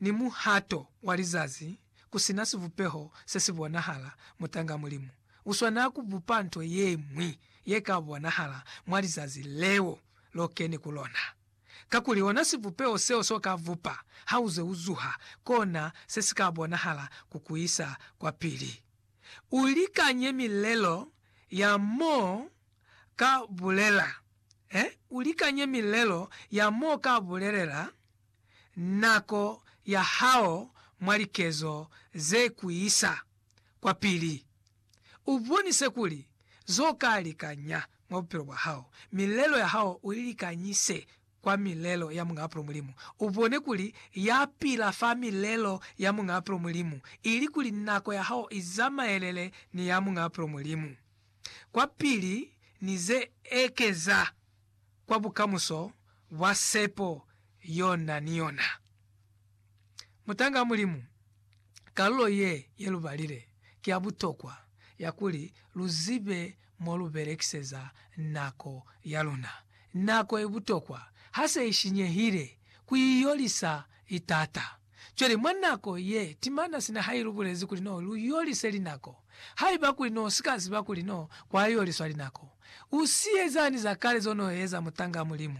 ni muhato wa lizazi ku si na sibupeho se si bonahala, mutanga Mulimu u swanela ku bupa nto ye ñwi ye ka bonahala mwa lizazi leo lo keni ku lona. Kakuli ona sibupeho seo s'o ka bupa ha u ze u zuha, kona se si ka bonahala ku ku isa kwapili. U likanye milelo ya m'o ka bulela, eh, u likanye milelo ya m'o ka bulelela nako ya hao mwa likezo ze ku isa kwapili. U bonise kuli zo ka likanya mwa bupilo bwa hao. Milelo ya hao u i likanyise kwa milelo ya Muñaa Bupilo Mulimu. U bone kuli ya pila fa milelo ya Muñaa Bupilo Mulimu, ili kuli nako ya hao i zamaelele ni ya Muñaa Bupilo Mulimu kwapili ni ze ekeza. kwa bukamuso bwa sepo yo na ni yona. Mutanga Mulimu, kalulo ye ye lu balile ki ya butokwa ya kuli lu zibe mo lu belekiseza nako ya luna. Nako i butokwa ha se i shinyehile ku i yolisa i t'ata. Cwale, mwa nako ye timana sina ha ilubulezi kuli no lu yolise linako, haiba kuli no si ka ziba kuli no kwa yoliswa linako, u si ezani za kale zo no eza mutanga Mulimu.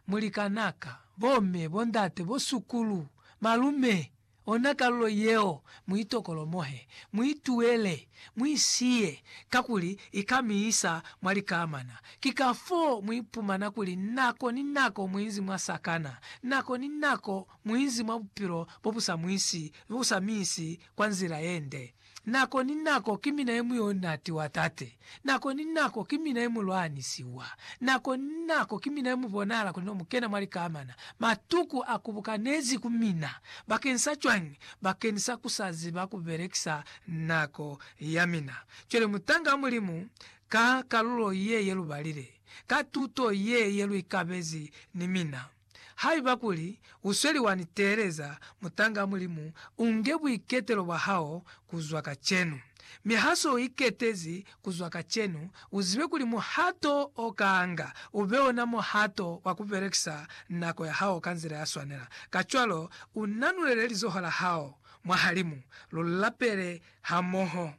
Mulikanaka, bomme, bondate, bosukulu, malume, ona kalulo yeo, mu itokolomohe, mu ituele, mu isiye, kakuli i ka mi isa mwa likamana. Ki kafoo mu ipumana kuli nako ni nako mu inzi mwa sakana, nako ni nako Muinzi mwa bupilo bo bu sa mwisi, bo bu sa mi isi kwa nzila ye nde. Nako ni nako ki mina ye muyo na tiwa Tate. Nako ni nako ki mina ye mu lwanisiwa. Nako ni nako ki mina ye mu bonahala kuli no mu kena mwa likamana. Matuku a kubukanezi ku mina. Bakeni sa cwañi? Bakeni sa ku sa ziba ku belekisa nako ya mina. Cwale mutanga wa Mulimu, ka kalulo ye ye lu balile, ka tuto ye ye lu ikabezi ni mina, Haiba kuli u sweli wa ni teeleza, mutanga wa Mulimu, u nge buiketelo bwa hao ku zwa kacenu. Mi ha se u iketezi ku zwa kacenu, u zibe kuli muhato o kanga u be ona muhato wa ku belekisa nako ya hao ka nzila ya swanela. Kacwalo, u nanulele lizoho la hao mwahalimu, lu lapele hamoho.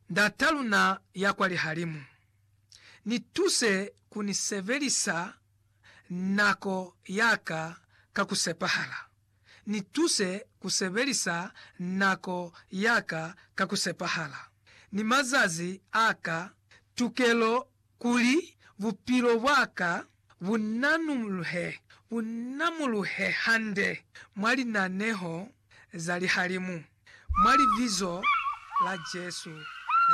Ndat'a luna ya kwa lihalimu. Ni tuse ku ni sebelisa nako ya ka ka ku sepahala. Ni tuse ku sebelisa nako ya ka ka ku sepahala, ni mazazi a ka. Tukelo kuli bupilo bwa ka bu nanuluhe, bu namuluhe hande mwa linaneho za lihalimu, mwa Libizo la Jesu Kreste.